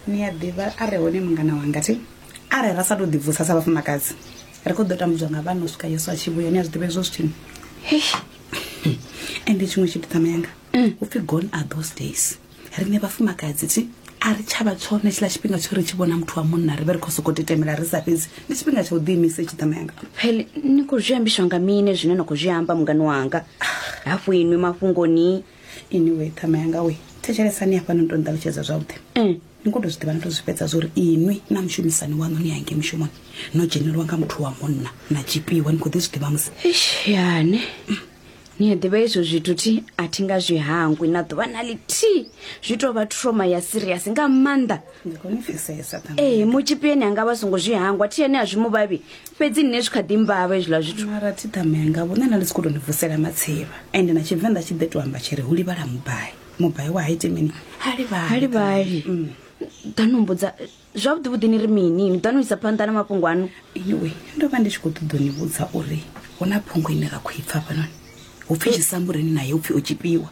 ni a ḓivha a re hone mungana wanga thi arali ra sa tou ḓibvusa sa vhafumakadzi ri khou ḓo tambudzwa nga vhana u swika yesu a tshi vhuya ni a zwi ḓivha hezwo zwithini ende tshiṅwe tshithu ṱama yanga mm. u pfhi gone are those days riṋe vhafumakadzi thi a ri tshavha tshone tshiḽa tshifhinga tsho ri tshi vhona muthu wa munna ri vhe ri khou sokou titemela ri sa fhedzi ndi tshifhinga tsha u ḓiimisa itshi ṱama yanga pele ni khou zwi ambiswa nga mine zwine na khou zwi amba mungani wanga hafhu inwi mafhungoni anyway ṱhama yanga we thetshelesani hafha no to nṱalutshedza zwavhuḓi mm. ni khou to zwi ḓivha no to zwi fhedza zwa uri inwi na mushumisani waṋu ni yange mushumoni no dzhenelwa nga muthu wa munna na tshipiwa ni khou ḓi zwi ḓivha musi yane mm. ni a ḓivha izwo zwithu thi a thi nga zwi hangwi na ḓuvha na ḽithihi zwi tou vha troma ya siriasi nga maanḓa ee mutshipi ene anga vha songo zwi hangwa thi ene a zwi mu vhavhi fhedzi nne zwi kha ḓi mbavha hezwiḽa zwithumara thi ṱame anga vhone na ḽi si khou tou ni vusela matsivha ende na tshivenḓa tshi ḓe to amba tshi ri hu livhala mubai mubai wa ha ite mini ha livhali mm. ḓa no mbudza zwavhuḓi vhuḓi ni ri mini ni ḓa no isa phanḓa na mafhungo ano anyway ndo vha ndi tshi khou ṱoḓo ni vhudza uri hu na phungo ine ra khou i pfa fhanoni hu pfhi tshisambuleni naye u pfhi o tshipiwa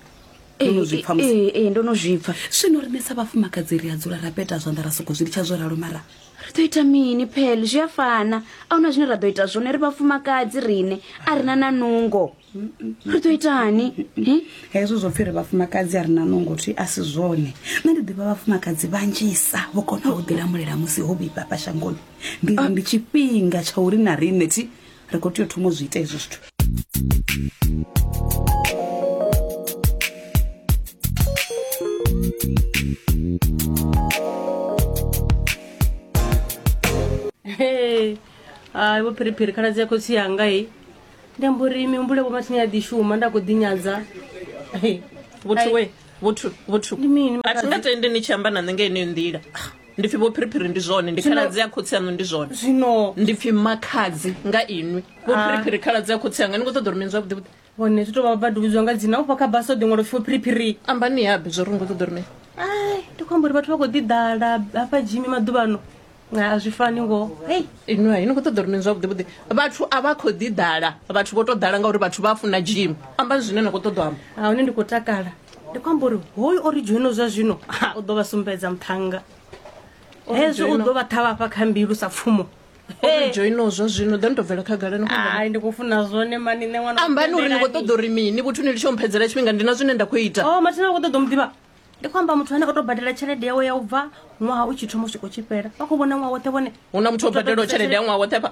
Ndo no zwi pfa musi- ee ee, ndo no zwi pfa zwino rine sa vhafumakadzi ri a dzula ra peta zwanḓa ra soko zwi litsha zwo ralo mara ri ḓo ita mini phele zwi a fana a huna zwine ra ḓo ita zwone ri vhafumakadzi rine a ri na na nungo ri ḓo itani Hi? hezwo zwo pfhi ri vhafumakadzi a ri na nungo thi a si zwone nṋe ndi ḓivha vhafumakadzi vhanzhisa vho konaho u ḓilamulela musi ho vhifhafha shangoni ndi ri ndi tshifhinga tsha uri na riṋe thi ri khou tea u thoma u zwi ita hezwo zwithu Hey, hai vho phiriphiri khaladzi ya khotsi yanga i ndi amba uri mihumbulo vho mathini ya ḓi shuma nda khou ḓinyadza Hey, vhothu we vhothu vhothu Ndi mini, a thi nga tendi ni tshi amba na nṋe nga yeneyo nḓila ndi pfi vho phiriphiri ndi zwone ndi khaladzi ya khotsi yaṋu ndi zwone zwino ndi pfi makhadzi nga inwi vho ah. phiriphiri khaladzi ya khotsi yanga ni khou ṱoḓa uri mini zwavhuḓi vhuḓi hone zwi tou vha vha duvhidzwa nga dzina ufha kha basa o ḓi ṅwalo pfi vho phiriphiri ambani yabe zwo ri ni khou ṱoḓa uri mini ai ndi khou amba uri vhathu vha khou ḓi ḓala hafha dzhimi maḓuvhano a zwi fani ngo hei inwi hai ni khou ṱoḓa uri mini zwavhuḓi vhuḓi vhathu a vha khou ḓi ḓala vhathu vho tou ḓala ngauri vhathu vha funa dzhimi ambani zwine na khou ṱoḓa amba a hone ndi khou takala ndi khou amba uri hoyu o ri dzhoino zwa zwino u ḓo vha sumbedza muṱhannga hezwi u ḓo vha ṱhavha fha kha mbilu sa pfumo dzhoino zwa zwino ḓo ni tou bvela khagala ni ai ndi khou funa zwone mani nṋe ṅwana ambani uri ni khou ṱoḓa uri mini vhuthu ni litsho mphedzela tshifhinga ndi na zwine nda khou ita o oh, mathina khou ṱoḓa mu ḓivha ndi khou amba muthu ane o tou badela tshelede yawe ya u bva ṅwaha u tshi thoma u swika u tshi fhela vha khou vhona ṅwaha woṱhe vhone hu na muthu o badelaho tshelede ya ṅwaha woṱhe pha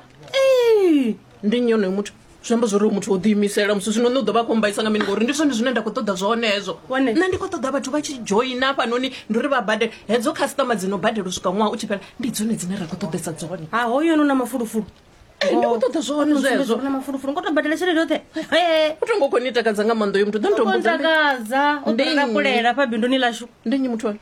ndi nnyi onoyo muthu zwi amba zwori muthu o ḓiimisela musi zwino nṋe u ḓo vha khou mbaisa nga mini ngori ndi zwone zwine nda khou ṱoḓa zwone hezwo nṋe ndi khou ṱoḓa vhathu vha tshi dzhoina hafhanoni ndi uri vha badele hedzo khasiṱama dzi no badela u swika ṅwaha u tshi fhela ndi dzone dzine ra khou ṱoḓesa dzone ha hoyo no na mafulufulu eh, ndi khou ṱoḓa zwone zwezwo na mafulufulu ngo to badela tshelede yoṱhe u tongo khou ni takadza nga maanḓa uyo muthu ḓo ntombotakadza u ḓo rakulela fha binduni lashu ndi nnyi muthu one